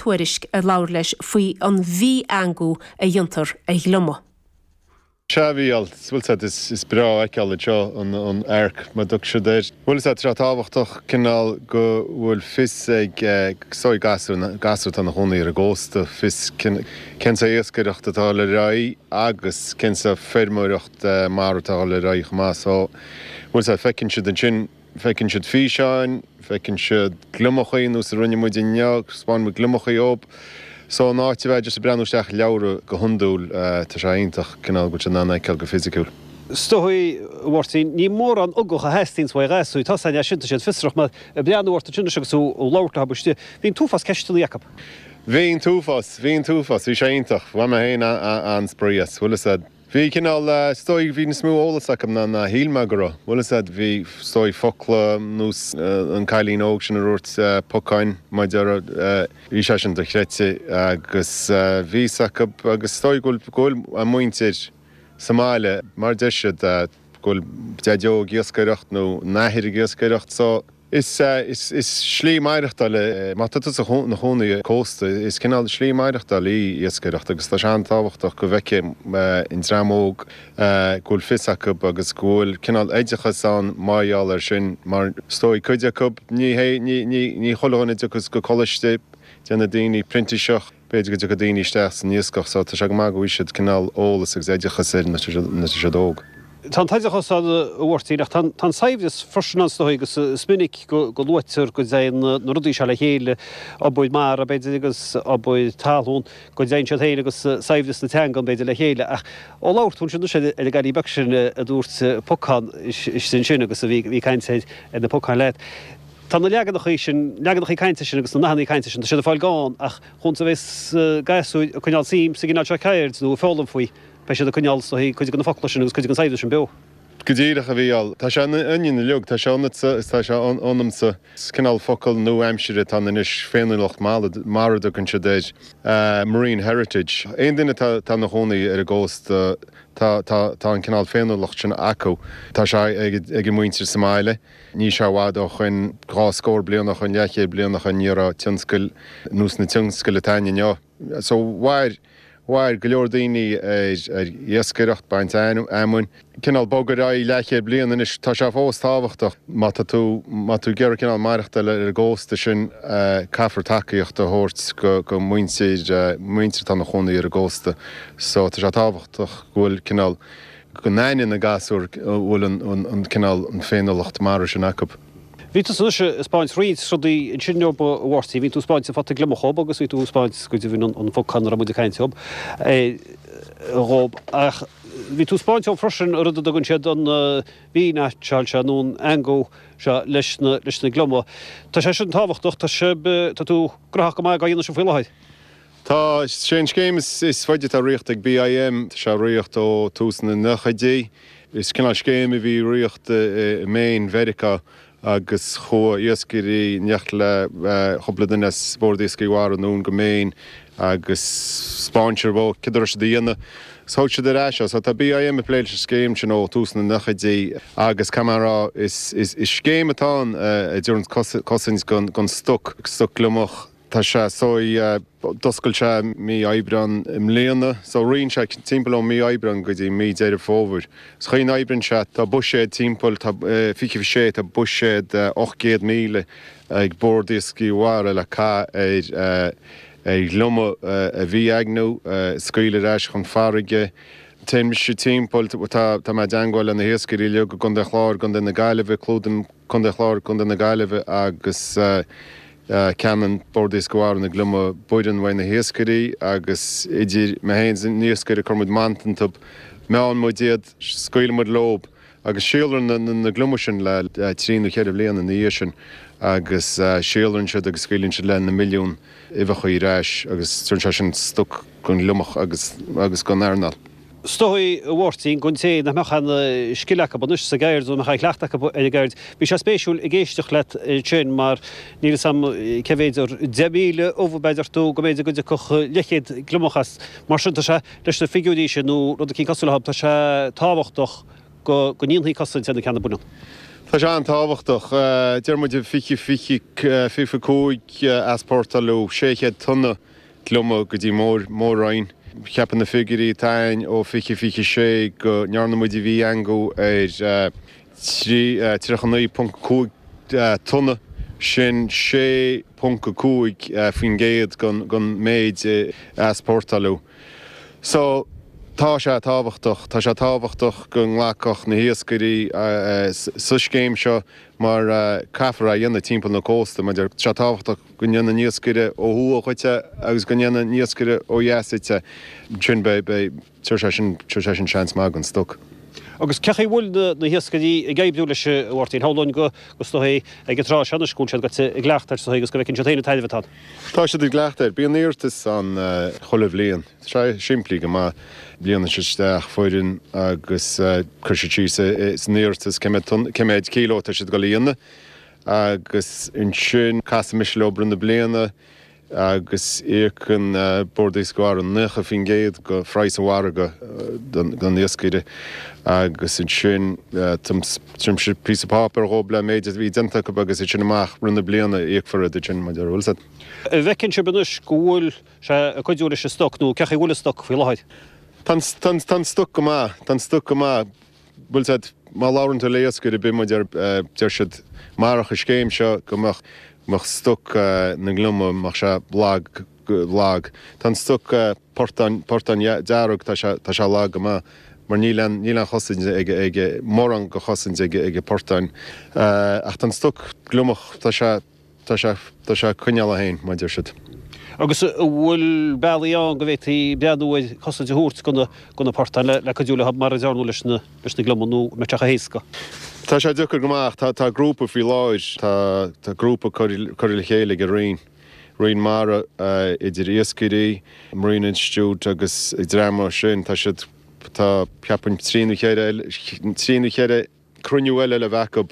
tuairisc ar labhair leis faoi an v-eangú a dhéantar ar ghliomach. 'Sea, a Mhíchíl, bhfuil a fhios agat, is is breá a fheiceáil anseo an an Arc mar a dtugann siad air, bhfuil a fhios agat, tá sé tábhachtach cineál go bhfuil fios ag sorry gasúir na gasúir atá ina chónaí ar an gcósta fios cén sort iascaireacht atá lena n-aghaidh agus cén sort feirmeoireacht mara atá lena n-aghaidh chomh maith so bhfuil a fhios agat feiceann siad ansin Feiceann siad físeáin, feiceann siad gliomachai, nós a rinne muid inniu, thaispeáin muid gliomachai dóib. So in áit a bheith ag iarraidh breathnú isteach i leabhra go hiondúil, tá sé iontach cineál go bhfuil siad in ann é a fheiceáil go fisiciúil. Is dóigh, a Mháirtín. Ní mórán ugach a theastaíonns ó ghasúir, tá siad iontach fiosrach, mar bhí mé ag breathnú orthu ansin agus tú ag labhairt leo thart, bhí an t-uafás ceisteanna acu. Bhí an t-uafás, bhí an t-uafás. Bhí sé iontach. Bhain mé féin an-spraoi as. Bhuel Bhí cineál, is dóigh go bhí níos mó eolas acu ná ná shíl mé go raibh. Bhuel, is ea, bhí, is dóigh, focla nós an cailín óg sin a dúirt Pocáin mara, bhí sé sin dochreidte agus bhí fhios acu, agus is dóigh go bhfuil, go bhfuil a muintir sa mbaile, mar deir siad, go bhfuil Daideo ag iascaireacht nó an Athair ag iascaireacht so, Is slí maireachtáil é. Má tá tú ina chónaí ar chósta, is cineál slí maireachtáil í iascaireacht agus tá sé an-tábhachtach go bhfeicfidh an dream óg go bhfuil fios acu agus go bhfuil cineál oideachas ann mar gheall air sin mar is dóigh cuid acu, ní chuile dhuine a thiocfas go coláiste, déanfaidh daoine printíseacht. b'fhéidir go dtiocfadh daoine isteach san iascaireacht so tá sé go maith go bhfaighidh siad cineál eolas agus oideachas air nuair tá siad óg. Tá an t-oideachas ann, a Mháirtín, ach tá an saibhreas freisin ann is dóigh agus is minic go luaitear go dtéann na rudaí seo le chéile, obair mara, b'fhéidir, agus obair talún, go dtéann siad féin agus saibhreas na teangan, b'fhéidir, le chéile. Ach ó labhair tú ansin, anois, ar an gcailín beag sin a dúirt 'pocán', í sin agus í ag caint ar na pocáin leat. Tá na leaganachaí sin, leaganachaí cainte sin agus na nathannaí cainte sin, tá siad ag fáil gann ach chúns a bheas gasúir ag coinneáil suim sa gcineál seo ceird nó ag foghlaim faoi, beidh siad ag coinneáil is dóigh, cuid de na focla sin agus cuid den saibhreas sin beo. Go díreach, a Mhíchíl. Tá sé ionainn uilig, tá sé ionatsa is tá sé ionamsa. Is cineál focal nua-aimseartha atá ann anois, féiniúlacht mhara a dtugann siad air, marine heritage. Aon duine atá ina chónaí ar an gcósta, tá an cineál féiniúlacht sin acu. Tá sé ag a muintir sa mbaile. Níl sé i bhfad ó shoin, dhá scór bliain ó shoin, leathchéad bliain ó shoin, ní raibh tionscail nós na tionscail atá ann inniu. So mhair, mhair go leor daoine ar, ar iascaireacht, baint fheamainn, cineál bog ar aghaidh leathchéad bliain. Anois tá sé fós tábhachtach. Má tá tú, má tá tú ag iarraidh cineál maireachtáil ar an gcósta sin, caithfear tacaíocht a thabhairt go, go muintir, muintir atá ina chónaí ar an gcósta. So tá sé tábhachtach go bhfuil cineál, go n-aithneodh na gasúir go bhfuil an cineál féiniúlacht mar sin acu. Bhí tusa anois a 'speáint roinnt rudaí ansin inniu, a Mháirtín. Bhí tú a 'speáint an phota gliomach dhób agus bhí tú a 'speáint go deimhin an bhocáin a raibh muid a' caint air dhób, eh, dhób. Ach bhí tú a 'speáint dhób freisin an rud a dtugann siad an, eh, V-neaitseáil seo nó an eangú seo leis na, leis na gliomaigh. Tá sé sin tábhachtach, tá sibh, eh, tá tú graitheach go maith gá dhéanamh sin faoi láthair. Tá sé an scéim is faide atá rite ag BIM. Tá sé rite ó tús na nochaidí. Is cineál scéim a bhí rite i Maine Mheiriceá agus chuaigh iascairí, in éineacht le cúpla duine as Bord Iascaigh Mhara anonn go Maine agus spáineadar dóib cén dóigh é a dhéanamh, agus thóg siad ar ais é. So tá BIM ag plé leis an scéim sin ó tús na nochaidí agus caithfidh mé a rá is scéim atá ann a dtabharann cosaint gon stoc, stoc gliomach. Tá sé, so yeah. D'oscail sé mí Aibreán i mbliana, so ritheann sé timpeall ó mí Aibreán go dtí mí Deireadh Fómhair. An chaoi a n-oibreann sé, tá buiséad timpeall, tá, fiche a sé, tá buiséad ocht gcéad míle ag Bord Iascaigh Mhara le caitheamh ar, ar ghliomaigh a V-eangú, scaoileadh ar ais chun farraige. Téann mise timpeall, tá, tá mé i dteagmháil le na hiascairí uilig i gContae an Chláir, Contae na Gaillimhe, clúdaim Contae an Chláir, Contae na Gaillimhe agus. ceannaíonn Bord Iascaigh Mhara na gliomaigh baineann uaidh na hiascairí agus idir mé féin is an t-iascaire cuireann muid mant iontub, meánn muid iad, scaoileann muid leob agus síolraíonn na gliomaigh sin le trí nó cheithre bhliana ina dhiaidh sin agus síolraíonn siad agus scaoileann siad leis na milliúin uibheacha ar ais agus tabharann sé sin stoc don ghliomach agus don earnáil. 'S dóigh, a Mháirtín, don té nach mbeadh an scil acu anois sa gceird, nó nach raibh aon chleachtadh acu ar an gceird. Bhí sé spéisiúil ag éisteacht leat ansin, mar níl 'fhios a'm cé mhéid, 10,000 ubh b'fhéidir, nó go mb'fhéidir go dtiocfadh leithchéad gliomach as. Mar sin, tá sé, leis na figiúirí sin, nó rud eicínt cosúil leo, tá sé tábhachtach go ndéanfaí cosaint ar na ceanna baineann. Tá sé an-tábhachtach. Deir muid fiche, fiche, fiche cúig easpórtáladh, sé chéad tonna gliomach go dtí an mór-mór-roinn. Ceapann na figiúirí atá againn ó 20, 26 go ndearna muid V-eangú ar 39.5 tonna, sin 6.5% den méid a easpórtáladh. So, tá sé tábhachtach. Tá sé tábhachtach go nglacfadh na hiascairí leis an scéim seo mar caithfear é a dhéanamh timpeall an chósta. Tá sé tábhachtach. Go ndéanfadh an iascaire ó thuaidh dhuit é agus go ndéanfadh an iascaire ó dheas duit é. Ansin beidh, beidh, tabharfaidh sé sin, tabharfaidh sé sin seans maith don stoc. Agus cén chaoi bhfuil na, na hiascairí ag oibriú leis a Mháirtín? Shamhlóinn go, go sna, ag an tráth seo anois go bhfuil siad goite i gcleachtadh air sin agus go bhfeiceann siad féin an tairbhe atá ann. Tá siad i gcleachtadh air. Bíonn iarratais ann chuile bhliain. Tá sé simplí go maith. Líonann siad isteach foirm agus cuireann siad síos san iarratas cé mhéad tonn, cé mhéad kilo atá siad ag dul a dhéanamh Agus ansin casaimse leob i rith na bliana agus íocann Bord Iascaigh Mhara 90% go phraghas an mhargaidh don iascaire agus ansin tugaimse píosa páipéar dhóib le méid a bhí déanta acu agus as sin amach i rith na bliana íocfar iad sin mar a deir, bhfuil fhios a'd. An bhfeiceann sibh anois go bhfuil sé ag cuidiú leis an stoc nó cé chaoi bhfuil an stoc faoi láthair? Tá an stoc go maith, tá an stoc go maith. bhfuil fhios a'd, má labhrann tú le hiascaire ar bith, mar a deir, deir siad marach an scéim seo go mbeadh, mbeadh stoc na ngliomach, mbeadh sé lag, lag, tá an stoc portán, portán dearg, tá sé, tá sé lag go maith mar níl aon, níl aon chosaint ag, ag, mórán go chosaint ag, ag an portán ach tá an stoc gliomach, tá sé. Tá sé, tá sé ag coinneáil é féin, mar a deir siad. Agus an bhfuil bealaí ann go bhféadfaí breathnú ar cosaint a thabhairt do na, do na portáin le cuidiú le, mar a dearnadh leis na, leis na gliomaigh nó an mbeadh sé chomh héasca? Tá sé deacair go maith ach tá, tá grúpa faoi láthair, tá, tá grúpa curtha, curtha le chéile ag an Roinn, Roinn Mara, idir iascairí, Marine Institute agus dream mar sin, tá siad, tá ceapaim trí nó cheithre eile, trí nó cheithre. cruinniú eile le bheith acu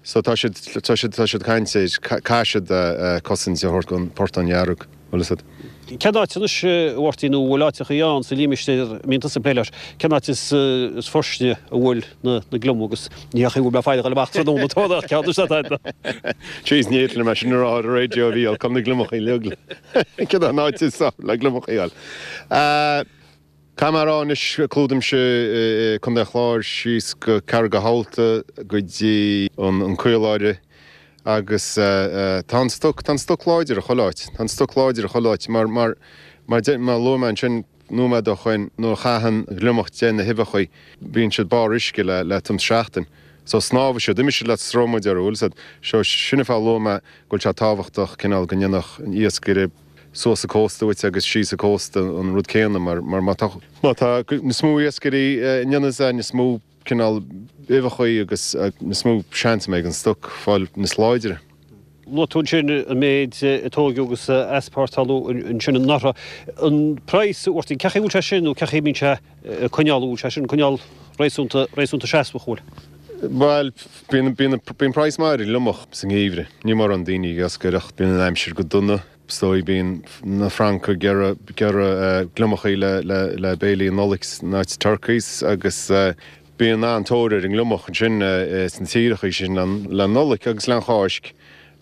so tá siad, tá siad, tá siad caint air, caithfidh siad cosaint a thabhairt don phortán dhearg, bhfuil fhios a'd. Cén áit anois, a Mháirtín, nó an bhfuil áiteachaí ann sa límistéir a mbíonn tusa ag plé leis, cén áit is fairsinge a bhfuil na gliomaigh agus ní hé an chaoi go bhfuil mé ag feileacháil amach tráthnóna an t-am ceart, is é tá. Jeez, ní fhéadfainn é sin a rá ar an raidió a bhí, I'll come na gliomachaí uilig, cén áit is le gliomachaí a fháil. Tá mé a rá anois, clúdaímse Contae an Chláir síos go Carraig an Chabhaltaigh go dtí an Caoláire agus tá an stoc, tá an stoc láidir i chuile áit, tá an stoc láidir i chuile áit mar, mar, mar deir, mar a luaigh mé ansin nóiméad ó shoin, nuair a chaitheann gliomach de na huibheachaí, bíonn siad barr uisce le, le tuairim is seachtain. So snámhann siad, imíonn siad le sruth, mar a deir, bhfuil fhios a'd. So sin an fáth a luaigh mé go bhfuil sé tábhachtach cineál go ndéanfadh an iascaire, suas an cósta uait agus síos an cósta an rud céanna mar má tá, má tá, níos mó iascairí á dhéanamh, tá níos mó cineál uibheachaí agus níos mó seans a bheidh ag an stoc fáil níos láidre. Luaigh tú ansin an méid a tóigeadh agus a easpórtáladh ansin anuraidh. An praghas a bhfuair tú, cén chaoi bhfuil sé sin nó cén chaoi a mbíonn sé? a choinneáil, bhuel, sé sin, coinneáil réasúnta, réasúnta seasmhach, bhuel. Bhuel, bíonn, bíonn, bíonn praghas maith ar an ngliomach sa ngeimhreadh, níl mórán daoine ag iascaireacht, bíonn an aimsir go dona, is dóigh, bíonn na Francaigh ag iarraidh, ag iarraidh gliomachaí le, le, le béilí an Nollaig in áit turkeys agus bíonn an-tóir ar an ngliomach ansin sna tíreachaí sin le an Nollaig agus le an Cháisc.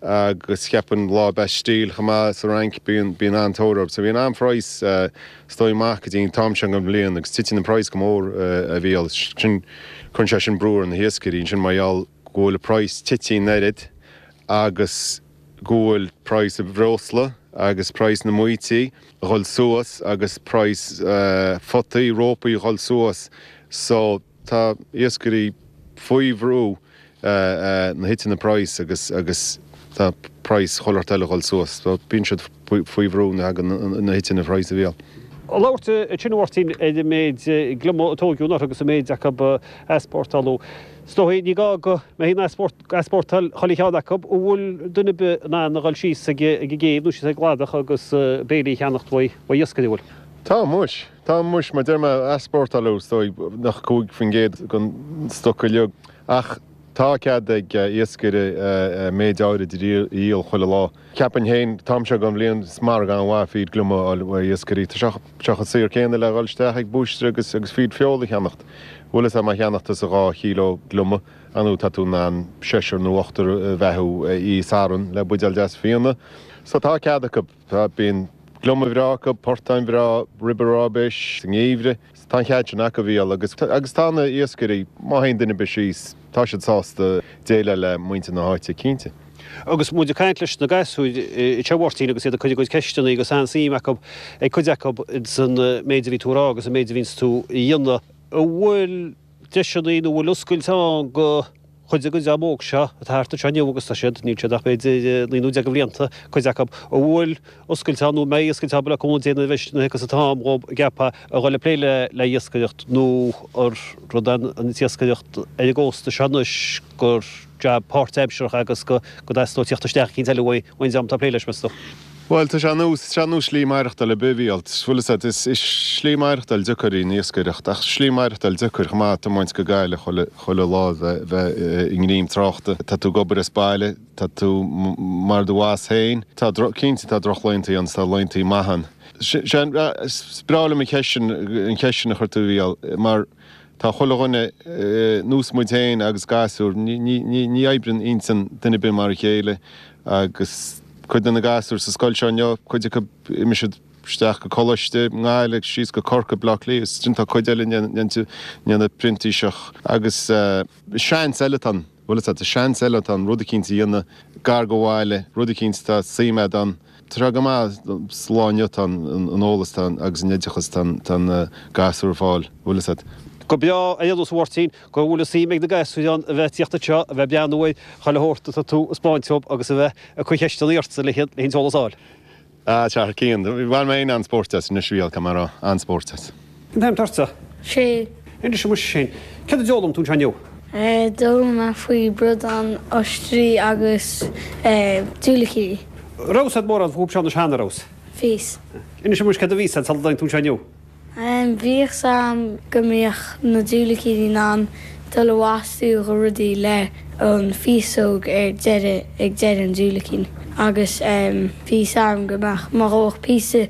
agus cheapainn lá Bastille chomh maith sa Fhrainc, bíonn, bíonn an-tóir air. So bíonn an praghas, is dóigh, maith go dtí an t-am seo den bhliain agus titeann an praghas go mór, a Mhícheáil. Sin, cuireann sé sin brú ar na hiascairí ansin mar gheall go bhfuil an praghas tite an oiread agus go bhfuil praghas an bhreosla agus praghas na mbaoití a dhul suas agus praghas photaí, rópaí a dhul suas. So. Tá iascairí faoi bhrú nuair a thiteanns an praghas agus agus tá praghas chuile shórt eile a dhul suas. Bíonn siad faoi bhrú nuair a thagann nuair a thiteanns an praghas a Mhícheáil. Ag labhairt i dTeach Mháirtín ar an méid gliomaigh a tóigeadh anuraidh agus an méid acu a easpórtáladh. Is dóigh, ní gá go mbeifí ag easpórtáil chuile cheann acu. An bhfuil duine ar bith in ann a dhul síos ag an gcéibh nó síos ag an gcladach agus béilí a cheannacht uaidh iascaire? An bhfuil? Tá muis! Tá, muis, mar deir mé, easpórtáiltear, is dóigh, nach 5 faoin gcéad den stoc uilig, ach tá cead ag iascaire méid áirid a dhíol chuile lá. Cheapainn féin, an t-am seo dhen bhliain, is margadh an-mhaith feed gliomach a fháil ó iascaire, tá sé chomh saor céanna le dhul isteach ag búistéir agus feed feola a cheannacht. Bhuel, sé má cheannaíonn tusa dhá chíló gliomach, inniu tá tú in ann seisear nó ochtar a bheathú, istigh san ardán le buidéal deas fíona, so tá cead acub. Tá, bíonn gliomaigh bhreá acu, portáin bhreá, ribe róibéis sa ngeimhreadh, tá an cead sin acu a Mhícheáil, agus agus tá na iascairí, má théann duine ar bith síos, tá siad sásta déileáil le muintir na háite, cinnte. Agus muid ag caint leis na gasúir i dTeach Mháirtín agus iad ag cur a gcuid ceisteanna agus an-suim acu ag cuid acu san méid a bhí tú a rá agus an méid a bhíonns tú a dhéanamh, an bhfuil deiseanna nó an bhfuil oscailt ann go. Chuid den dream óg seo atá thart anseo inniu, agus tá siad, níl siad ach b'fhéidir idir naoi nó deich de bhlianta, cuid acu, an bhfuil oscailt ann nó an mbeidh oscailt ann beidh acu an déanamh a bheith ag an t-am dhób an gceapfá a dhul ag plé le iascaireacht nó an rud an iascaireacht ar an gcósta seo anois gur jab páirtaimseartha agus go dteastódh tíocht isteach eicínt eile uaidh an dream atá ag plé leis, meas tú? Bhuel, tá sé ar nós, tá sé ar nós slí maireachtail ar bith a Mhícheáil, bhfuil 'fhios a'd, is, is slí maireachtail deacair í an iascaireacht ach slí maireachtail deacair chomh maith tiomáint go Gaillimh chuile, chuile lá bheith, bheith i ngreim tráchta, tá tú ag obair as baile, tá tú mar do bhoss féin, tá droch, cinnte tá droch laethanta ann 's tá laethanta maith ann. Sé, sé an, is breá liom an cheist sin, an cheist sin a chuir tú a Mhícheáil mar, Tá chuile dhuine, ar nós muid féin agus gasúir, ní oibríonn intinn duine ar bith mar a chéile agus cuid de na gasúir sa scoil seo inniu, cuid acu imeoidh siad isteach go Coláiste i nGaillimh agus síos go Corcaigh, Baile Átha Cliath, is cinnte tá cuid eile a dhéanfaidh printíseacht agus seans eile atá ann, bhuel, is seans eile atá ann rud eicínt a dhéanamh gar dho bhaile, rud eicínt atá suim a'd ann. Tá sé go maith, slán inniu, tá an eolas agus an oideachas atá na gasúir ag fáil, a bhfuil fhios a't. Go breá, a Aonghus Mháirtín, go bhfuil fhios a'm ag na gasúir ann a bheith ag tíocht anseo, a bheith ag breathnú ar chuile shórt atá tú a thaispeáint dhób agus a bheith ag cur cheisteannaí ortsa le tuilleadh eolais a fháil. Ah, a Chathair Ciain, bhain mé an-spórt as, anois a bheith cóir, a Mháire, an-spórt as. Cén t-ainm atá ortsa? Sé. Anois muise sin, céard a d'fhoghlaim tú anseo inniu? D'fhoghlaim mé faoi bradán, oistrí agus diúilicíní. Raibh fhios a'd mórán fúthu seo anois cheana, raibh? Bhí fhios. Anois muis, céard a bhí fhios a'd sula dtáinig tú anseo inniu? Bhí fhios a'm go mbíodh na diúilicíní in ann dul ag fastú dho rudaí le an féasóg ar deireadh, ag deireadh an diúilicín agus bhí fhios a'm go mbeadh, má ghabhadh píosa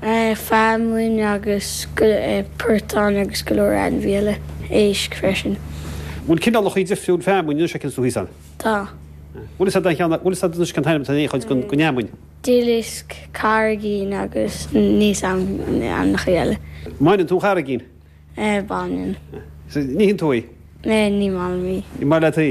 feamainn agus portáin agus go leor ainmhí eile éisc freisin. Bhfuil cineálachaí difriúil feamainn anois a fhásanns sa Sruthán? Tá. Bhfuil 'fhios a'd an cheann, bhfuil 'fhios a'd anois cén t-ainm atá ar aon chuid den fheamainn? Dillisk, Carraigín agus níl fhios a'm ainmneachaí eile. Mbaineann tú an charraigín? Baineann. An itheann tú í? Ní maith liom í. Ní maith leat í?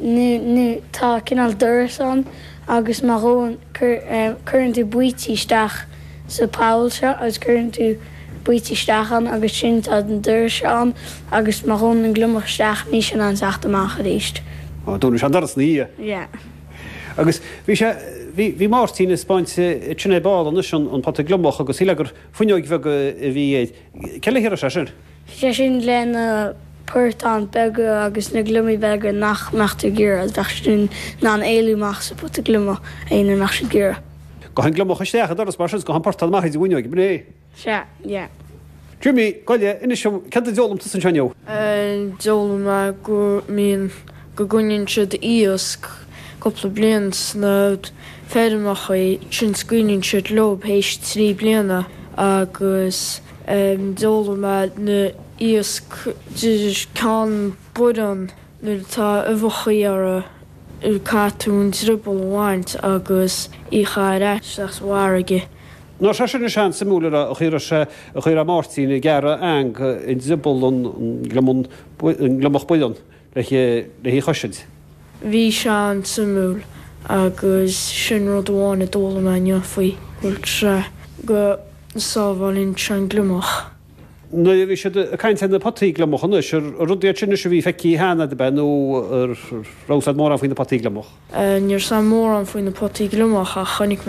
nó tá cineál doras ann agus má ghabhann, cuireann tú baoite isteach sa poll seo agus cuireann tú baoite isteach ann agus sin tá an doras seo ann agus má ghabhann an gliomach isteach níl sé in ann teacht amach arís. Ó, dúnann sé an doras ina dhiaidh? Yeah. Agus bhí sé, bhí, bhí Máirtín ag spáint, dúinn ar ball anois an, an pota gliomach agus shíl mé gur fuinneoig bheag a bhí i, Cé le haghaidh é sin? Is é sin, le na portáin beaga agus na gliomaigh beaga nach mbeadh tú ag iarraidh, bheadh siad in ann éalú amach as an bpota gliomaigh fhéin nach mbeadh siad ag iarraidh. Gabhann gliomach isteach an doras mar sin, is gabhann portán amach ag an bhfuinneoig, an ea? Sea, yeah. Jimmy, gabh i leith, inis dom, céard a d'fhoghlaim tusa anseo inniu? D'fhoghlaim mé go mbíonn, go gcoinníonn siad iasc. cúpla bliain sna feirmeacha sin scaoileann siad leob théis trí bliana agus d'fhoghlaim mé ná iasc de cheann boireann nuair atá uibheacha orthu caithfidh tú an drioball a bhaint agus í a chaitheamh ar ais sa bhfarraige. Nó sé sin an siosúr sin a raibh a chuireadh sé a chuireadh Máirtín ag gearradh eang i ndrioball an gliomach boireann. le hí a chosaint. Bhí sé an-suimiúil agus sin rud amháin a d'fhoghlaim mé inniu faoi chur trá, go sábhálann sé an gliomach. Nuair a bhí siad ag caint ar na potaí gliomach anois, ar rud iad sin anois a bhí feicthe cheana agat a bheith nó an raibh a fhios agat mórán faoi na potaí gliomach? Ní raibh a fhios agam mórán faoi na potaí gliomach ach chonaic mé